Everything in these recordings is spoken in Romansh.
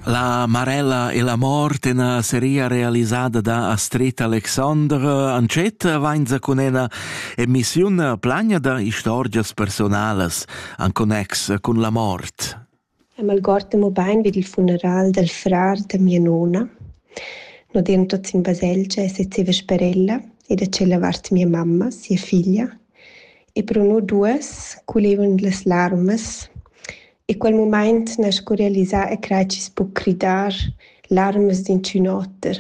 La Marella e la mort in seria realisada da Astrid Alexandre Ancet vainza cun ena emissiun plagna da istorgias personalas an connex cun la mort. M'algord mo bain vid il funeral del frar da mia nona. No dien tots in baselgia e sezeva sperella e da cella vart mia mamma, sia figlia. E pro no duas culevon las larmas E quel mumaint n'ha sco realisà e crai chi's po cridar larmas d'inchün oter.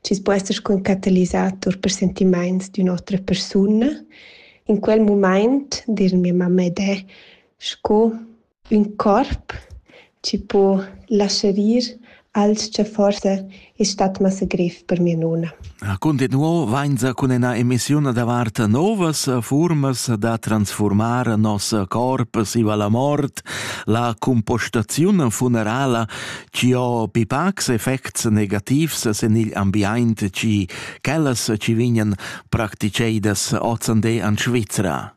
Chi's po esser sco ün catalisator per sentimaints d'ün'otra persuna. In quel mumaint, dir mia mamma ed e, sco ün corp chi po lascher ir Alch cha forsa es stat massa grev per mia nona. Cuntinuo vainsa cun üna emissiun davart novas fuormas da transfurmar nos corp siva la mort, la compostaziun funerala chi ho pipacs effects negativs sen il ambiaint chi quellas chi vignan practiceidas ozande an Svizra.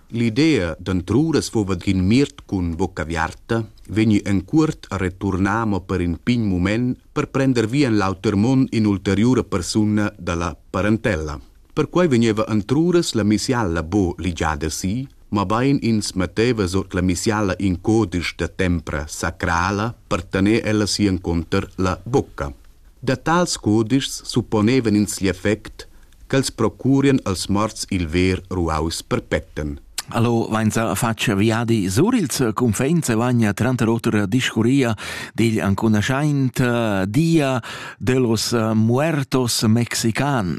L'idea d'antruras fuva d'in miert cun vucca aviarta vegni en cuort a returnar mo per in pign mument per prender via en l'auter mund in'ulteriura persuna dalla parentella. Perquei vegneva antruras la misialla buca ligiada si, mabain ins metteva sut la misialla in codisch da tempra sacrala per tener ella si encunter la bucca. Da tals codischs supponevan ins l'effect ch'els procurien als morts il ver ruaus perpetten. Allo vainsa faccia viadi sur il confins e vagna tranter otra discuria digl ancunaschaint eh, dia de los eh, muertos mexican.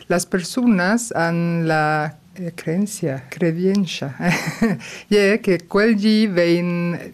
Las personas han la eh, creencia, credienza, e che quel di vein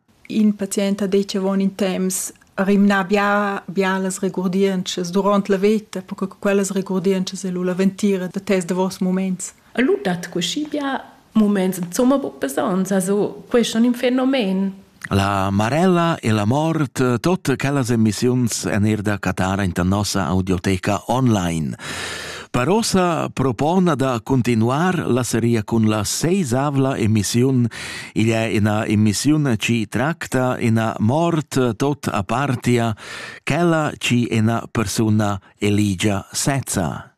In pazient ha detg avon in temps rimnà bia bia las regurdientschas duront la veta, perche che quellas regurdientschas ei lu la ventira da tes davos muments. E lu dat cuschi bia muments insomma buc besons, also questo è un fenomen. La marella e la mort, tutte quelle emissioni en er da Catara in nossa audioteca online. Parossa propona da cuntinuar la seria cun la seisavla emissiun. Igl è ina emissiun ci tracta ina mort tot apartia, quella ci ina persuna eligia sezza.